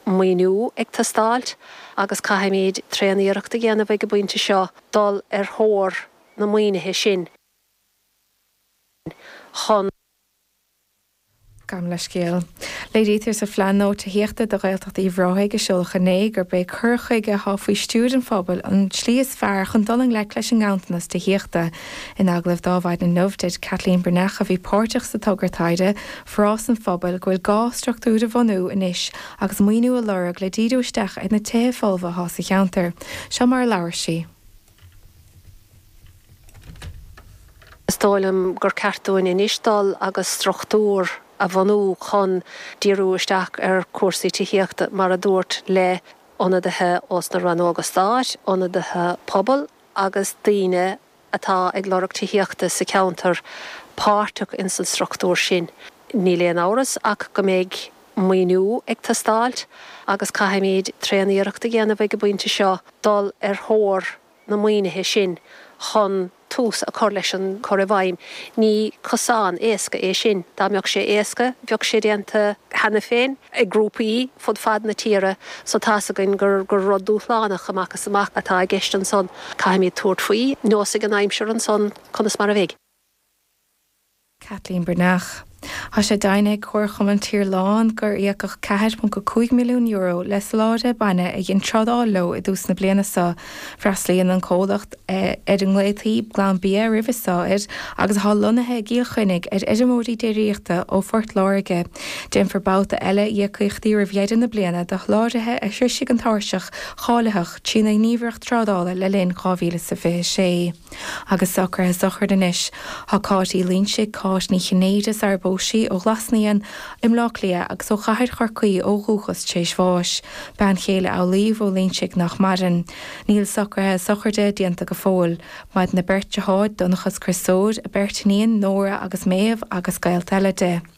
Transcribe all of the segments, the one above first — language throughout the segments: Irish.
maoiniú ag teastáilt agus caithfimid tréan-iarracht a dhéanamh ag an bpointe seo dul ar thóir na maoinithe sin chun. Gabhaim leithscéal. Léirítear sa Phlean Gnó Tithíochta do Ghaeltacht Uíbh Ráthaigh a seoladh inné gurb é cur chuige atá faoi stiúir an phobail an tslí is fearr chun dul i ngleic leis an nganntanas tithíochta. In agallamh ar maidin inniu dúirt Caitlín Breathnach, a bhí páirteach sa togra taighde, Forás an Phobail go bhfuil gá struchtúr a bhunú anois agus maoiniú a lorg le díriú isteach ar na tithe folmha atá sa cheantar. Seo mar a labhair sí. Is dóigh liom gur ceart dúinn anois dul agus struchtúr a bhunú chun díriú isteach ar cúrsaí tithíochta, mar a dúirt le ionadaithe ós na rannóga stáit, ionadaithe pobail agus daoine atá ag lorg tithíochta sa cheantar páirteach ins an struchtúr sin, níl aon amhras ach go mbeidh maoiniú ag teastáilt agus caithfimid tréan-iarracht a dhéanamh ag an bpointe seo dul ar thóir na maoinithe sin chun tús a chur leis an gcur i bhfeidhm. Ní cosán éasca é sin. Dá mbeadh sé éasca, bheadh sé déanta. cheana féin, ag grúpaí fud fad na tíre, so tá's againn gur rud dúshlánach amach is amach atá i gceist ansan. Caithfimid tabhairt faoi, neosfaidh an aimsir ansan conas mar a bheidh. Caitlín Breathnach. Tá sé deimhnithe ag Comharchumann Tirlán gur íocadh €4.5 milliún le soláthraithe bainne a dhein trádáil leo i dtús na bliana seo Freastlaíonn an comhlacht ar a nglaotaí Glanbia roimis seo agus atá lonnaithe i gCill Chainnigh ar fheirmeoirí déiríochta ó Phort Láirge. Déanfar babhta eile íocaíochtaí roimh dheireadh na bliana do sholáthraithe a shroisfidh an tairseach cháilitheach trína nGníomhaireacht Trádála le linn 2026. Agus socruithe sochraide anois, tá Cáit Uí Loinsigh, Cáit Ní Chinnéide, sara bpós sí, ó Ghlas Naíon i mBleá Cliath agus ó Chathair Chorcaí ó dhúchas tréis bháis, bean chéile Amhlaoibh Ó Loinsigh nach maireann. Níl socruithe sochraide déanta go fóill. Maireann a beirt deartháir, Donnchadh 's Criostóir, a beirt iníon, Nóra agus Méabh agus gaolta eile di.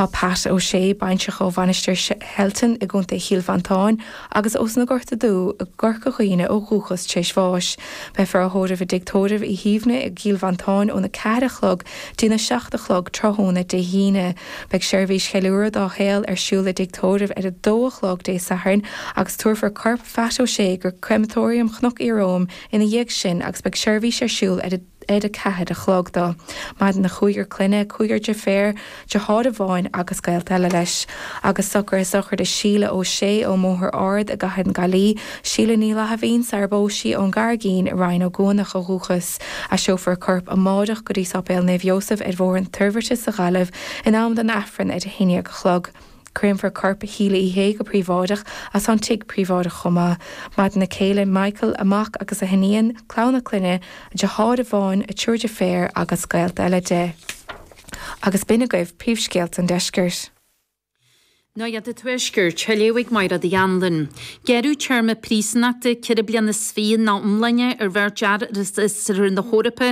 Tá Pat Ó Sé Báinseach ó Mhainistir Shelton i gContae Chill Mhantáin agus ós na Gorta Dubha i gCorca Dhuibhne ó dhúchas tréis bháis. Beifear á thórramh i dTigh Tórraimh Uí Shuibhne i gCill Mhantáin óna ceathair a chlog dtí na seacht a chlog tráthnóna Dé hAoine. Beidh seirbhís cheiliúrtha dá shaol ar siúl i dTigh Tórraimh ar a dó a chlog Dé Sathairn agus tabharfar corp Phat Ó Sé go Crematorium Chnoc Iaróm ina dhiaidh sin agus beidh seirbhís ar siúl ar a ar a ceathair a chlog dó. Maireann a chúigear clainne, cúigear deirféar, deartháir amháin agus gaolta eile leis, agus socruithe sochraide Síle Ó Sé ón mBóthar Ard i gCathair na Gaillí, Síle Ní Fhlaithimhín, sara bpós sí ón gCarraigín i Rinn Ó gCuanach ó dhúchas, aistreofar a corp amáireach go dtí Sáipéal Naomh Iósaf ar Bhóthar na Toirbhirte sa Ghaillimh in am don Aifreann ar a haon dhéag a chlog. Créamfar corp Shíle Uí Shé go príobháideach is an tigh príobháideach chomh maith. Maireann a céile, Michael, a mac agus a hiníon, clann a clainne, deartháir amháin, a triúr deirféar agus gaolta eile di. Agus b'in agaibh príomhscéalta an deiscirt. Nuacht an tuaiscirt á léamh ag Máire Uí Anluain. Gearradh téarma príosúnachta ceithre bliana is fiche ina iomláine ar bheirt fhear as Oirthear na hEorpa,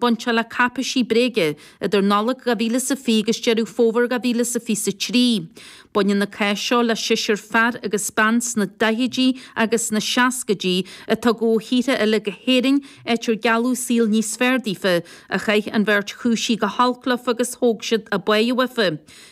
Bainteach le cáipéisí bréige idir Nollaig 2020 agus Deireadh Fómhair 2023. Baineann an cás seo le seisear fear agus bean sna daichidí agus sna seascaidí a tugadh ó thíortha eile go hÉirinn, áit ar gealladh saol níos fearr daofa, ach chaith an bheirt chúisí go holc leofa agus thóg siad a bpá uafa.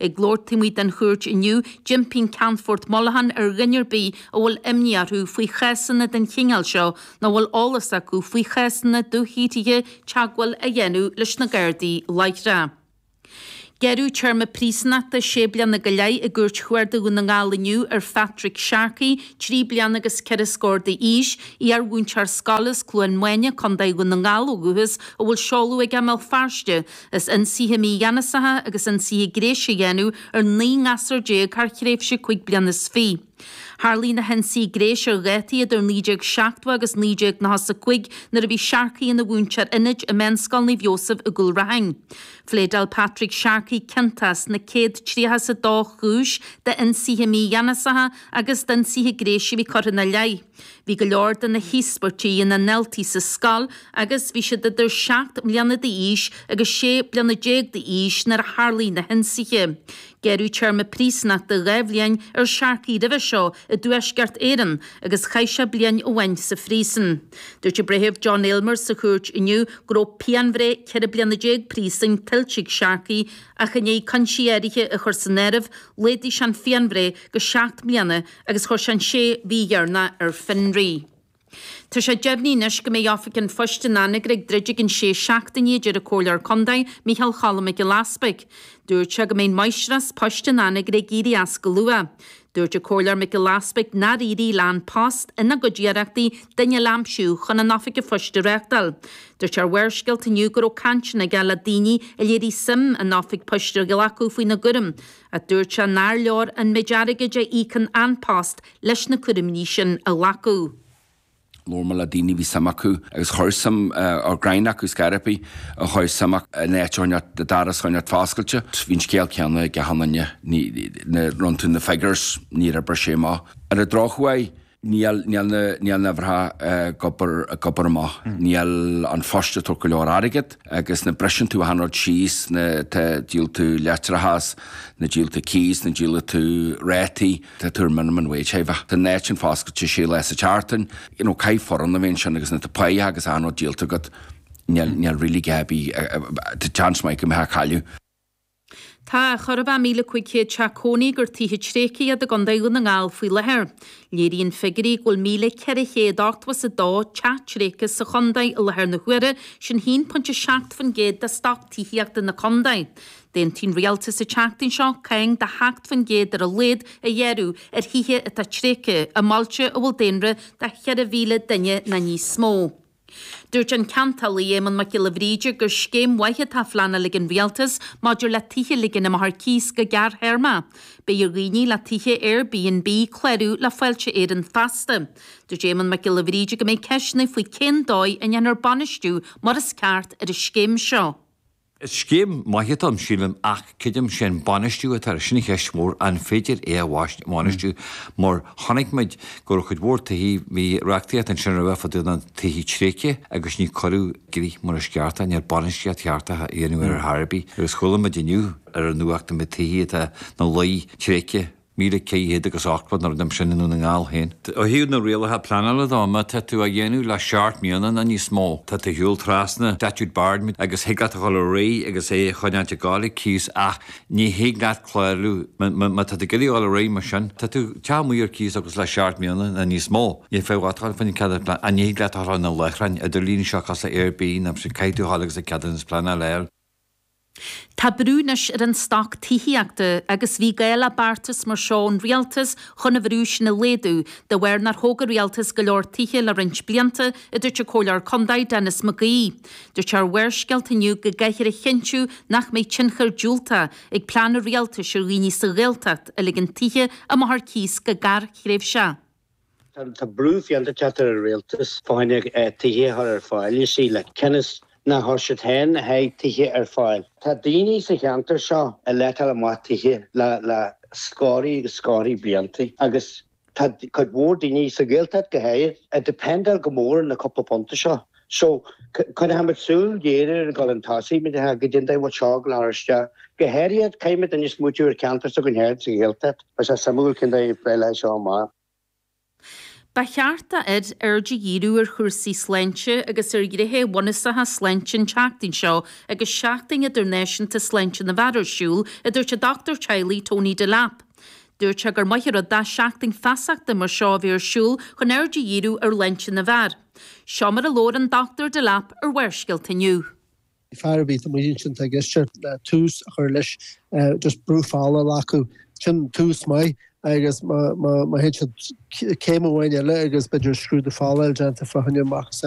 Ag labhairt taobh amuigh den chúirt inniu, d'impigh an Ceannfort Mollohan ar dhuine ar bith a bhfuil imní orthu faoi chásanna den chineál seo nó a bhfuil eolas acu faoi chásanna dúshaothraithe teagmháil a dhéanamh leis na Gardaí láithreach. Gearradh téarma príosúnachta sé bliana go leith i gCúirt Chuarda Dhún na nGall inniu ar Phatrick Sharkey, trí bliana agus ceithre scór d'aois, iarmhúinteoir scoile as Cluain Maine, Co Dhún na nGall ó dhúchas, a bhfuil seoladh aige i mBéal Feirste. As ionsaithe mígheanasacha agus ionsaithe gnéis a dhéanamh ar naoi ngasúr déag thar thréimhse cúig bliana is fiche. Tharlaigh na hionsaithe gnéis ar dhátaí idir 1970 agus 1995 nuair a bhí Sharkey ina mhúinteoir ionaid i Meánscoil Naomh Iósaf i gCúil Raithin. Phléadáil Patrick Sharkey ciontach as na céad tríocha is a dó chúis d'ionsaithe mígheanasacha agus d'ionsaithe gnéis a bhí curtha ina leith. Bhí go leor de na híospartaigh ina ndaltaí sa scoil agus bhí siad idir seacht mbliana d'aois agus sé bliana déag d'aois nuair a tharlaigh na hionsaithe. Gearradh téarma príosúnachta dhá bhliain ar Sharkey roimhe seo i dTuaisceart Éireann agus chaith sé bliain amháin sa phríosún. Dúirt an Breitheamh John Aylmer sa chúirt inniu go raibh pianbhreith ceithre bliana déag príosúin tuillte ag Sharkey ach i ndiaidh cúinsí áirithe a chur san áireamh, laghdaigh sé an phianbhreith go seacht mbliana agus chuir sé an sé mhí dheireanach ar fionraí. Tá sé deimhnithe anois go mbeidh Oifig an Phoist in Anagaire ag druidigh an sé seachtainí a deir an Comhairleoir Contae, Micheál Cholm Mac Giolla Easbuig. Dúirt sé go mbeidh an Máistreás Poist in Anagaire ag éirí as go luath. Dúirt an Comhairleoir Mac Giolla Easbuig nár éirigh le An Post, ina gcuid iarrachtaí, duine eile a aimsiú chun an Oifig an Phoist a reachtáil. Dúirt sé ar Bharrscéalta inniu go raibh cainteanna aige le daoine a léirigh suim an Oifig Poist a ghlacadh faoina gcúram, ach dúirt sé nár leor an méid airgid a íocann An Post leis na cúraimí sin a ghlacadh. Labhair mé le daoine a bhí suim acu agus chuir suim, ar greim acu scairbhi, a chuir suim acu an áit a choinneáilt, an doras a choinneáilt foscailte. Bhí an scéal céanna ag achan nduine, nuair a rinn tú na figures, níor oibir sé amach. Ar an drochuair, Níl, níl na, níl na huimhreacha ag obair, ag obair amach, níl an Post ag tabhairt go leor airgead agus nuair a bhriseann tú achan rud síos, na, tá, díol tú leictreachas, nuair a dhíol tú cíos, nuair a dhíol tú rátaí, tá tú ar minimum wage thaobhach. Tá an áit sin foscailte sé lá sa tseachtain, you know, caithfidh foireann a bheith ansin agus nuair atá páighe agus achan rud díolta agat, níl, níl really dadaí, tá chance maith go mbeifeá ag cailleadh. Tá chóir a bheith 1,500 teach cónaí gur tithe tréigthe iad i gContae Dhún na nGall faoi láthair. Léiríonn figiúirí go bhfuil 1,482 teach tréigthe sa chontae i láthair na huaire, sin 1.7% de stoc tithíochta na contae. D'aontaigh an Rialtas an tseachtain seo cáin de 7% ar a laghad a ghearrú ar thithe atá tréigthe i mbailte a bhfuil daonra de 4,000 duine nó níos mó. Dúirt an ceantálaí Éamonn Mac Giolla Bhríde gur scéim mhaith atá á phleanáil ag an Rialtas maidir le tithe a ligean amach ar cíos go gearrthéarma. Beidh ar dhaoine le tithe AirBnB clárú le Fáilte Éireann feasta. Dúirt Éamonn Mac Giolla Bhríde go mbeidh ceisteanna faoi cén dóigh a ndéanfar bainistiú mar is ceart ar an scéim seo. Is scéim maith atá ann, sílim, ach creidim is é an bainistiú atá air? Sin an cheist mhór. An féidir é a bhainistiú? Mar chonaic muid go raibh cuid mhór tithí, bhí reachtaíocht ansin roimhe fá dtaobh de na tithe tréigthe agus níor cuireadh i gcrích mar is ceart é, ní raibh bainistíocht cheart á dhéanamh air ar chor ar bith. Agus chuala muid inniu ar an nuacht go mbeidh tithí atá ina luí tréigthe, Míle ceithre chéad agus ochtó nó rud mar sin i nDún na nGall féin. Ó thaobh na rialacha pleanála dó, má tá tú á dhéanamh le seacht mbliana nó níos mó, tá tú ag siúl trasna statute bar agus thig leat a dhul ar aghaidh agus é a choinneáilt ag gabháil cíos ach ní thig leat clárú má tá tú ag iarraidh a dhul ar aghaidh mar sin tá do theach amuigh ar cíos agus le seacht mbliana nó níos mó níl fiacha ort a dhul faoin cead pleanála ní thig leat a dhul ar na láithreáin idirlín seo cosúil le Airbnb nó sin caithfidh tú a dhul agus an ceadúnas pleanála a fháil. Tá brú anois ar an stoc tithíochta agus bhí gá le beartas mar seo ón rialtas chun an bhrú sin a laghdú, de bharr nár thóg an rialtas go leor tithe le roinnt blianta, a dúirt an Comhairleoir Contae, Denis McGee. Dúirt ar Bharrscéalta inniu go gcaithfear a chinntiú nach mbeidh tionchar diúltach ag plean an rialtais ar dhaoine sa Ghaeltacht a ligeann tithe amach ar cíos go gearrthréimhseach. Tá brú fiánta ag teacht ar an rialtas fá choinne tithe a chur ar fáil, you see, like, cionn is nár chuir siad féin a sáith tithe ar fáil. Tá daoine sa cheantar seo ag leatáil amach tithe le scórthaí agus scórthaí blianta agus tá cuid mhór daoine, sa Ghaeltacht go háirid, ag dependáil go mór ar na cúpla punta seo So, cuirfimid súil ghéar ar an gcolainn tosaigh, mar atá, go dtí an diabhal seo ag leathadh isteach. Go háirithe, caithfimid anois smaoitiú ar cheantar s'againn féin sa Ghaeltacht. Beidh sé suimiúil cén dóigh a bpléifear leis seo amach. Ba cheart d'fhir aird a dhíriú ar chúrsaí sláinte agus ar ghnéithe bunúsacha sláinte an tseachtain seo agus Seachtain Idirnáisiúnta Sláinte na bhFear ar siúl, a dúirt an dochtúir teaghlaigh Tony Delap. Dúirt sé gur maith an rud é seachtain feasachta mar seo a bheith ar siúl chun aird a dhíriú ar shláinte na bhfear. Seo mar a labhair an Dr. Delap ar Bharrscéalta inniu. Fear ar bith a mbíonn sin, tig leis tús a chur leis, just brú fola a ghlacadh, sin tús maith agus má théann siad céim amháin eile agus b'fhéidir scrúdú fola a bheith déanta fá choinne macasamhail